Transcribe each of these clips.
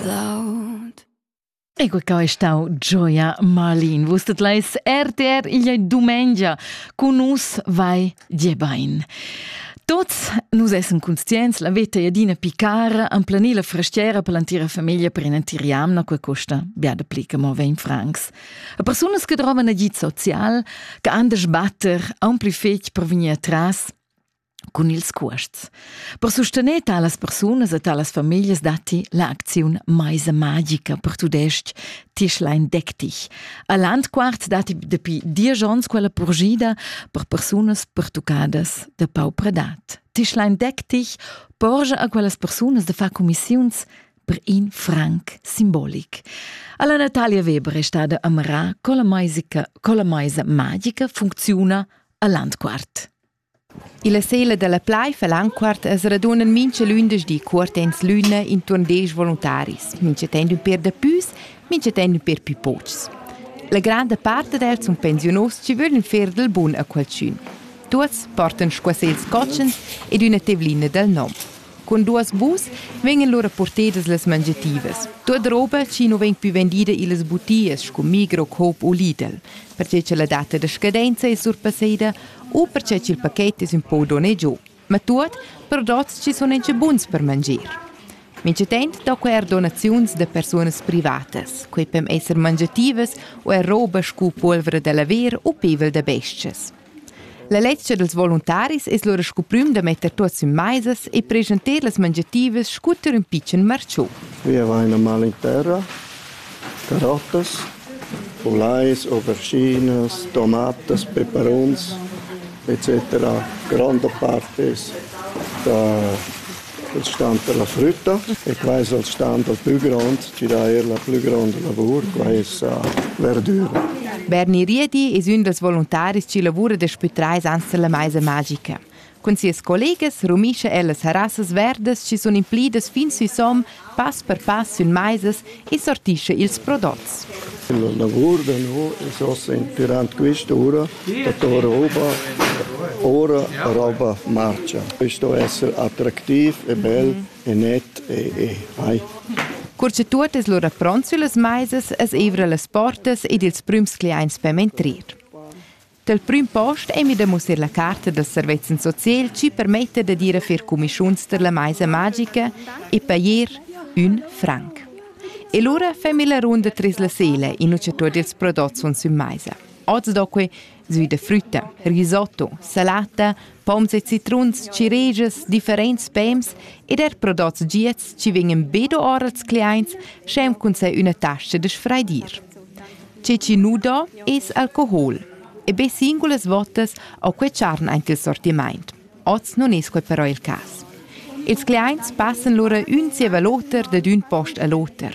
Cloud. Ecco qua è stau Gioia Malin. Vus stet leis RTR igl dumengia. Con nus vai diebain. Tots nus essem conscients la veta Edina Picar am plani la frastiera per l'antira famiglia per inantir jamna que costa biada pli che mo 20 francs. A persunas che trovan agit social, che anders batter, a un pli fetg per venir atras, cun ils cuosts. Per sustener talas persunas e talas famiglias datti l'acziun Maisa magica per tudestg Tischlein deck dich. A Landquart datti dapi diesch onns quella purgida per persunas pertuccadas da pau predat. Tischlein deck dich porgia a quellas persunas de far commissiuns per in franc simbolic. Alla Natalia Weber è stata amarà con la maisa magica funziona a Landquart. Illa sela da la plaiv e Lanquart as raduna mincha lündeschdi cuortends l'üna intuorn desch voluntaris, mincha temp ün pér dapüs, mincha temp ün pér pü pochs. La granda part dad els sun pensiunos chi vöglan fer dal bun a qualchün. Tuots portan squasels cotschens ed üna tevlina dal nom. Cun duas bus vegnan lura purtedas las mangiativas. Tuot roba chi nu vegn pü vendida illas butias scu Migro-Coop u Lidl, perche cha la data da scadenza es surpasseda u perche cha'l paket es ün po donè giò, ma tuot prodots chi sun incha buns per manger. Minchatant do quai eir donaziuns da persunas privatas, quai pem esser mangiativas u eir roba scu pulvra da laver u pevel da bes-chas. La lezcha dels voluntaris es lura scu prüm da metter tuots in maisas e preschanter las mangiativas scunter ün pitschen marciu. Via vaina mal in terra, carottas, ulais, auberginas, tomatas, peperuns, etc. Gronda part es da Il stand dalla frütta e quai es il stand dal plü grond chi dà eir la plü gronda lavur, quai es verdüra. Berni Riedi es ün dals voluntaris chi lavura daspü trais ans dalla maisa magica. Cun sias collegas rumischa el las harassas verdas chi sun inflidas fin sü som Pass per pass sün maisas e sortischa ils prodots. La lavur da no es ossa inpirant quista ura da tor roba. Ora roba marcha. Sto esser attractiv e bel e net e e mai. Cur cha tuot es lura pront süllas maisas as eivra las portas ed ils prüms cliaints per mintrir. Dal prüm post emi da mussar la carta da servezzan social chi permetta dad ir a fer cumischuns tar la maisa magica e pajer ün franc. E lura femi la runda tras la sela in ucha tuot ils prodots sun sün maisa. Oz do que sü da frütta, risotto, salata, Poms e citruns, ciregias, differents pems ed er prodots giats ci vegnan be do ora als clients, sch'em cun se üna tascha da sfraidir. Ce ci nu do es alcohol e be singulas votas ho que charn aint il sortimaint. Oz non es quel però il cas. Ils clients passan lura ün zieva l'oter dad ün post a l'oter.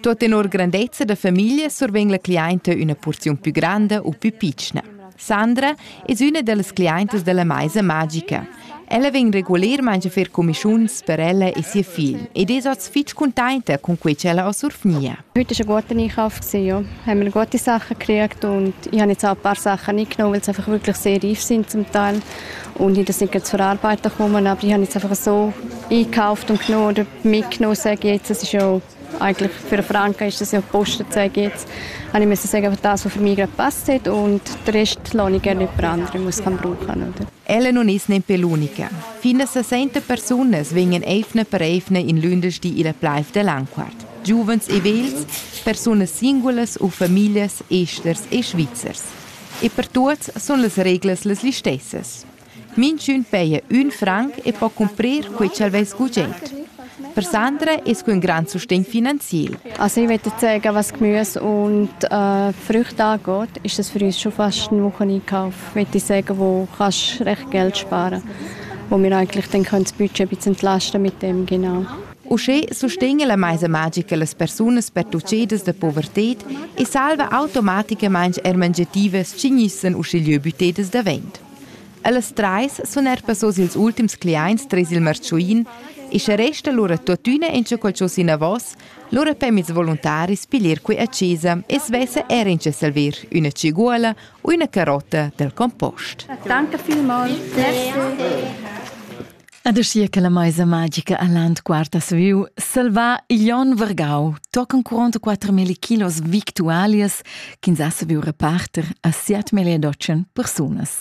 Tot tenor grandezza da famiglia survegn la clienta üna porziun più granda u più pitschna. Sandra es üna dallas clientas della Maisa Magica. Ella vegn regulermaing a fer comischuns per ella e sia figl ed es oz fich contenta con quei ch'ella ho survgnia. Heute ist eine gute Einkauf gewesen, ja. Haben wir gute Sachen gekriegt und ich habe jetzt auch ein paar Sachen nicht genommen, weil sie einfach wirklich sehr reif sind zum Teil und ich sind gerade zur Arbeiten gekommen, aber ich habe jetzt einfach so eingekauft und genommen oder mitgenommen, sage ich jetzt. Das ist ja Eigentlich für Franken ist das ja Posten zu gibt. Habe ich müssen sagen, was das, was für mich gerade passt hat und den Rest lasse ich gerne jemand anderem, der es brauchen kann. Oder? Ella non ist neppe l'unica. Fine 60 personas vengono eifne per eifne in lundersti illa plaiv de Lanquart. Giuvens e vels, personas singulas u familias esters e svizzers. E per tuots sun las reglas las listessas. Minchün peja ün franc e po cumprir quei ch'el vess gugent. Per Sandra es que ün grand sustegn finanziel. Also ich möchte sagen, was Gemüse und äh, Früchte angeht, ist das für uns schon fast ein Wocheneinkauf. Möchte ich sagen, wo kannst recht Geld sparen, wo wir eigentlich dann können das Budget ein bisschen entlasten mit dem, genau. Uschè sustegna la maisa magica las persunas pertuccedas da povertad e salva automaticamain er mangiativas ch'ignissan uschigliö büttedas davent. Ellas trais sun eir passos ils ultims cliaints tres il marchuin e scha resta lura tuottüna inscha qualchosa inavos, lura pem ils voluntaris piglier que a chesa e svessa eir inscha salver üna tschiguola u üna carotta dal compost. Danke vielmals. Ad aschia che la meisa magica a Land quarta saviu salvar igl onn vargau tocan 44.000 kilos victualias ch'ins ha saviu reparter a 7.800 persunas.